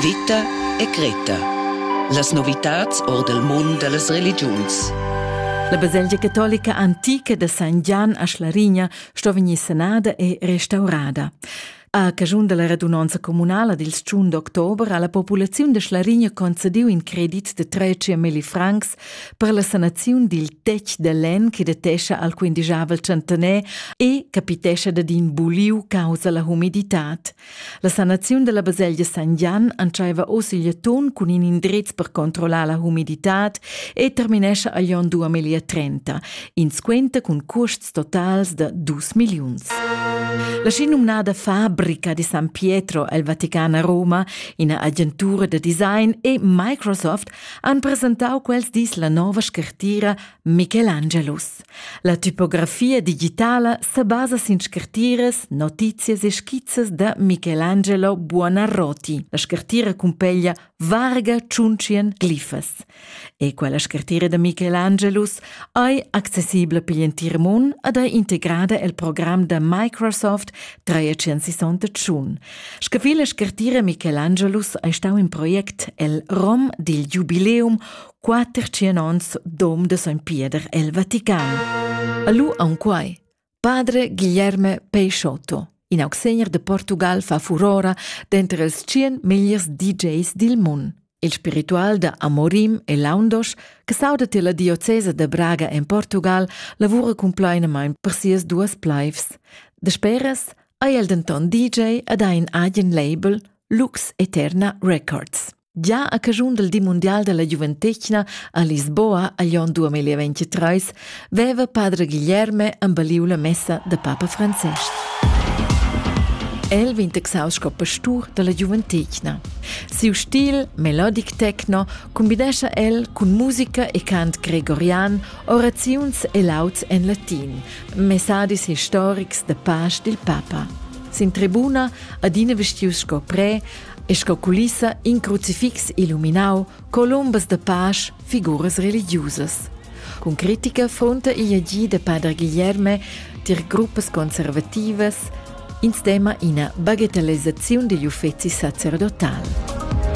Vita e Greta. Las novitads or del mund dellas religiuns. La baselgia catolica antica da San Gian a Schlarigna sto vegnir sanada e restaurada. A caschun della radunonza comunala dil 1 d'october ha la populaziun de Schlarigna concediu in credit de 300.000 francs per la sanaziun dil tec de lenn che detescha al quindigeavel centener e capitescha dad in buliu causa la humiditad. La sanaziun dalla baselgia San Gian entscheiva oz il Jaton cun in indrez per controllar la humiditad e terminescha agl onn 2030, in squenta cun custs totals da dus milliuns. La schinumnada Fabrica di San Pietro el Vatican a Roma, ina agentura da design e Microsoft han presentau quels dis la nova scartira Michelangelus. La typografia digitala sebasa sin scartiras, notizias e skizzas da Michelangelo Buonarroti. La scartira cumpeglia varga tschuntschien glifas. E quella scartira da Michelangelus ei accessibla per l'entir mund ed ei integrada el program da Microsoft 365. Scavi la scartira Michelangelus ei stau in project el rom dil jubileum quater tschien ons dom de Sogn Pieder el Vatican. Alu aunquai, padre Guilherme Peixotto, in augsegner de Portugal fa furora denter els tschien megliers DJs dil mund. Il spiritual da Amorim e Laundos, che sauda te la diocesa de Braga en Portugal, lavura compleinament per sias duas plaivs. De speras ha el denton DJ ad ein agen label Lux Eterna Records. Gia a caschun del di mundial della giuventetgna a Lisboa a Glion 2023 veva padre Guilherme embaliu la messa da papa Francesc. El vegn taxau sco pastur dalla giuventetgna. Siu stil melodic techno combinescha el cun musica e cant gregorian, oraziuns e lauds en latin, messadis historics da pasch dil papa. Sin tribuna, adina vestius sco pre, e sco culissa in crucifix illuminau colombas de pasch, figuras religiusas. Cun critica fonta igl agì de Padre Guilherme tier gruppas conservativas in stema ina bagatellezzaziun digl uffeci sacerdotal.